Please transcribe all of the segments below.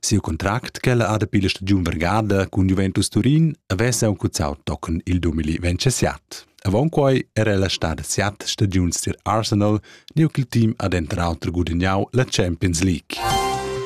Siu contract ch'ella ha dapi la stagiun vargada cun Juventus Turin avess aunc cuzzau tochen il 2027. Avon quei era ella stada siat stagiuns tier Arsenal, neu ch'il team ha denter auter gudagnau la Champions League.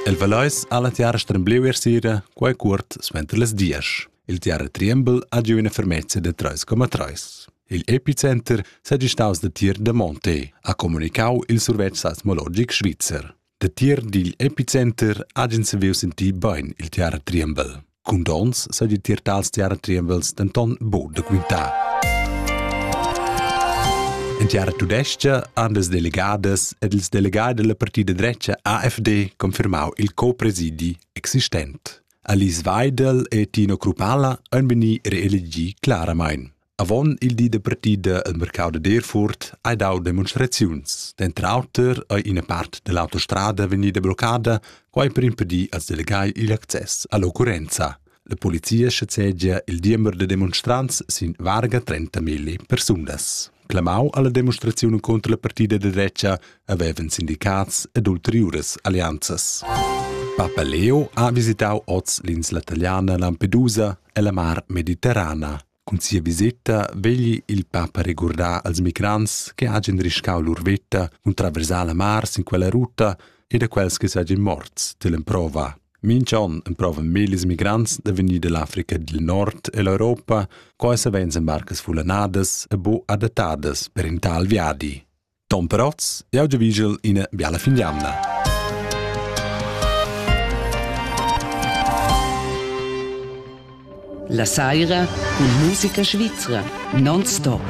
El Valeis ha la tiara strembleu er sera, quei cuort suenter las dias. Il tiara Triembel ha giu ina fermezza da 3,3. Il epicenter segistaus da tier da Monte, ha comunicau il survetsch seismologic svizzer. Datier digl epicenter ha ins saviu sentir bein il teater Triembel. Cun dons sa di tier tals teater Triembels denton buc da quintar. En teater tudestga han las delegadas ed ils delegai della partida drecha AfD confirmau il copresidi existent. Alice Weidel e Tino Krupala han veni reelegi claramain. Avon il di de partida al mercau de Derfurt hai dau demonstraziuns. Denter auter ei ina part dell'autostrada vegnida bloccada, quai per impedir als delegai il access all'occurrenza. La polizia schazegia il diember de demonstrants sin varga 30.000 persunas. Clamau alla demonstrazione contro la partida de drecha avevan sindicats ed ulteriures alleanzas. Papa Leo ha visitau oz l'insla italiana Lampedusa e la mar Mediterrana. Cun sia viseta vegli il papa regurdar als migrants che hagen riscau lur veta cun traversar la mar sin quella ruta e da quels che seigien morts dell'emprova. Mincha on emprovan millis migrants da vegnir dell'Africa dil Nord e l'Europa, co ei savein embarcas fullanadas e bu adattadas per in tal viadi. Tom Protz, jau giavigel ina biala fin d'jamna. La saira cun musica svizra non stop.